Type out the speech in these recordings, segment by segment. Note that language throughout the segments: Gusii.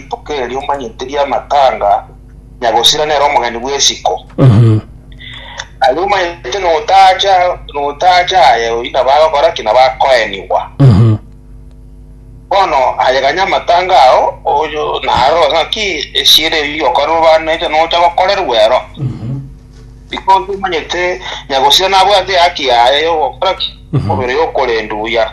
Rituko erio omanyete ri'amatanga, nyagosira nere omogeni bw'esiko. Aye omanyete notacha notacha aye oyio nabo agokora ki? Nabo akoenigwa. Bono aye ganya amatanga ao oyo naro ng'aki esiera eyio okorerwe bande eria nocha gokorerwa ero. Because omanyete nyagosira nabwate ehaki yaye y'ogokora ki? Omobere oyo okorendwa buya.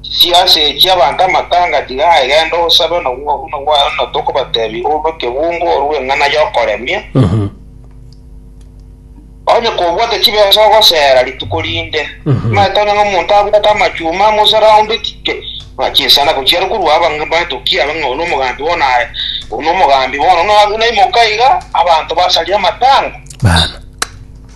Chisiasi echi abanto amatanga tiga aegende osabe nobwo obuno bwaye na tokobatebia orue kebungo orue eng'ana y'okoremia. Onye kobwate chibesa ogosera rituko rinde. Timaete onye ng'a omonto abwate amachuma amo osaraundetike na chinsana gochiera korwa abang'ina baito ki abe ng'a oyo nomogambi bono aye oyo nomogambi bono. Naimoka iga abanto basarire amatanga. Bana.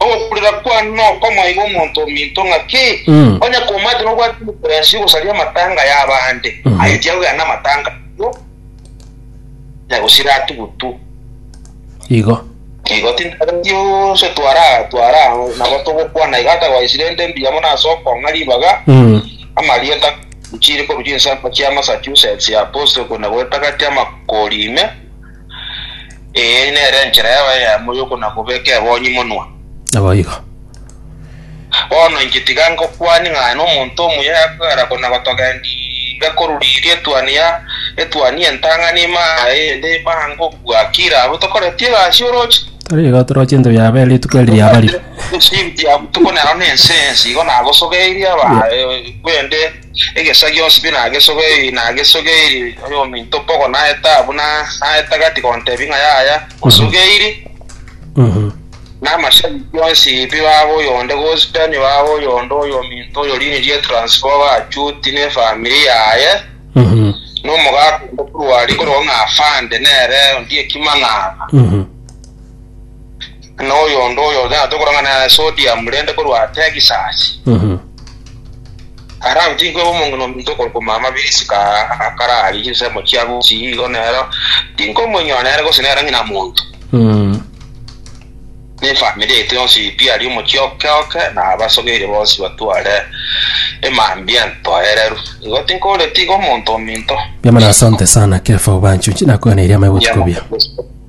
Ogokurera kwane nokomoaiga omonto ominto ng'aki? Mm. Onye komaete nobwate omokurensi ogosaria amatanga y'abande, Mhm. aye tiagogenda namatanga aino, na gosira atugutu. Igo. Igo tintageti onse twara twara nabo togokwana iga atagwaisire ende mbuya mono ase okong'a ribaga Mm. amarieta chiri korwa chinsemo chia Massachusetts ya Boston kona gwetagati amakori ime Eye nere enchera y'abayamo y'okona-kobeka ebonyi monwa. Naboigo. Bono inche tiga ngokwanie ng'a nomonto omuya yakogera kona-gotogendiria koruriria etuoni ya etuoni y'entang'ani ime aa eyende ime aa ngokwa. Kira abwo tokoreti egasi oroche? Tari igo toroche into biabo ere rituko eri riabarire. Nsibiti ya botuko nero nensensi, igo nagosogeirie aba- e- bende Egesa gionsi pi nagesogeirie, nagesogeirie, oyominto mbogo naeta abwo na naeta gati gontebia ng'a yaya, osogeirie. Namashabiki onsi pi baba oyonde gospel, baba oyonde oyominto oyo rini rie transfer bachuti ne family yaye, na omogaka onde korwa aria korogwa ng'a afande nere ondiekima ng'aba. na oyonde oyo otagete korang'ana ase Odiamu rende korwa Tegisasi. Ara agotiki kweba omong'ina ominto okorokwa Mama Birisika akararie chinsemo chia Gusi, igo nero tinkomoinyora nere gose nere ng'ina monto. Ne efamiri yaito yonsi pi aria omochie oke oke, na abasogeire bonsi batware emambia entoereru. Igo tinkooreti iga omonto ominto. Mbiamana asante sana Kefa obancho inche nakoeneire amaibotuko bia.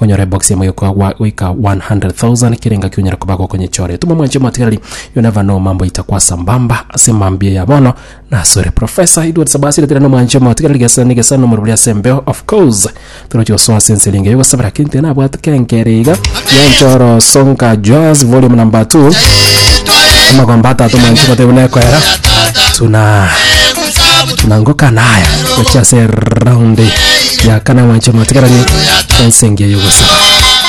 Onyore ebox emo yokoa gwa- goika 100,000 kera engaki onyare koba gokonyichore. Tuma omwanche omatigareri you never know mambo aita kwa sambamba ase mambia ya bono nasore. Professor Edward Sabasi ritire na omwanche omatigareri gesa ne gesa nomorwori ase embeo of course toroche gosoa ase ense erenge yogosabera keri ntiri nabwate kenkere iga Nyanchoro Songa Joas volume number 2 amagomba atato omwanche omotebe buna ekoera tuna na ngoka naya gochia ase eraundi ya kana mwanche mwatigarani ense engiya y'ogosaba